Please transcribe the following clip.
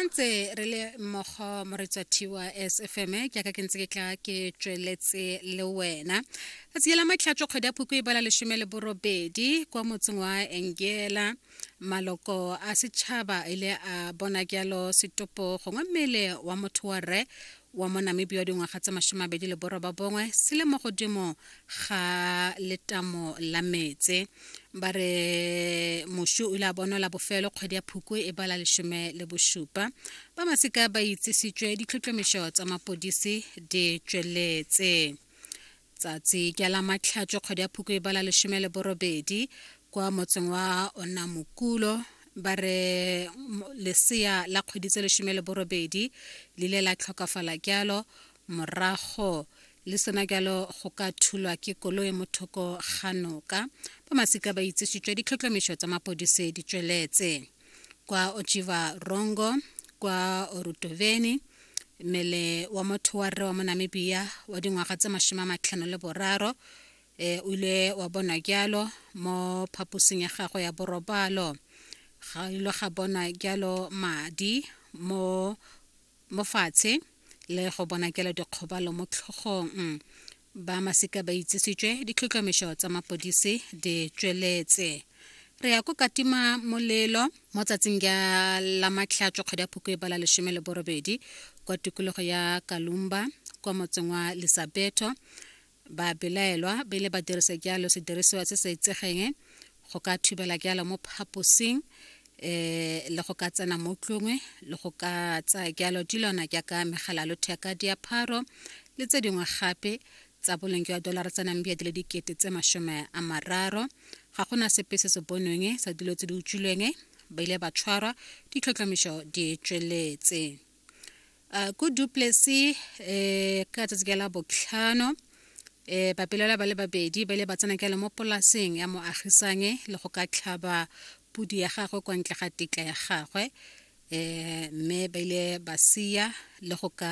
ntse re le mmogo moretsa thiwa sfm ke aka ke ntse ke tla ke tsweletse le wena ka tsela matlhatso kgwedi ya phoko e bala lesome le borobedi kwa motseng wa engela maloko a setšhaba ile a bona jalo setopo gongwe mmele wa motho wa rre wa mo namibia wa dingwaga tse masomabedi le borwa ba bongwe se le mo godimo ga letamo la metse ba re mošu o ile a bonwa la bofelo kgwedi ya phukwe e bala lesome le bosupa ba masika ba itsisitswe ditlhotlhomišo tsa mapodisi di tsweletse Tsatsi ke la matlhatšo kgwedi ya phuko e bala lesome le borobedi kwa motseng wa onamokulo ba re lesea la kgwedi tse lesome le borobedi le ile la tlhokafala jalo morago le sena jalo go ka thulwa ke koloi mo thoko ga noka ba masika ba itsesitswe ditlhotlhomišo tsa mapodise di tsweletse kwa ochiva rongo kwa orutoveni mmele wa motho wa rre wa mo namibia wa dingwaga tse masome a matlhano le boraro eh, o ile wa bonwa jalo mo phaposing ya gagwe ya borobalo ga ile ga bonwa jalo madi mo mo fatshe le go bona jalo dikgobalo mo tlhogong ba masika ba itsisitswe ditlhotlhomišo tsa mapodisi di tsweletse re ya ko katima molelo mo tsatsing ya la matlhatšo kgwedi ya phoko e bala lesome le borobedi kwa tikologo ya kalumba kwa motseng wa lisabeto ba belaelwa ba ile ba dirisa jalo sedirisiwa se sa itsegeng go ka thubela jalo mo phaposing eh le go ka tsena mo tlongwe le go ka tsaya jalo dilwana jaaka megala lotheka diapharo le tse dingwe gape tsa boleng jwa dolara tsa nambia di le dikete tse masome a mararo ga gona sepe se se bonweng sa dilo tse di utswilweng ba ile ba tshwarwa ditlhotlhomišo di tsweletse uh, ko duplessy eh, ka tsatsi ka la botlhano eh, bapelela ba le babedi ba ile ba tsena kele mo polaseng ya moagisange le go ka tlhaba pudi ya gagwe kwa ntle ga tetla ya gagwe eh, mme ba ile ba sia le go ka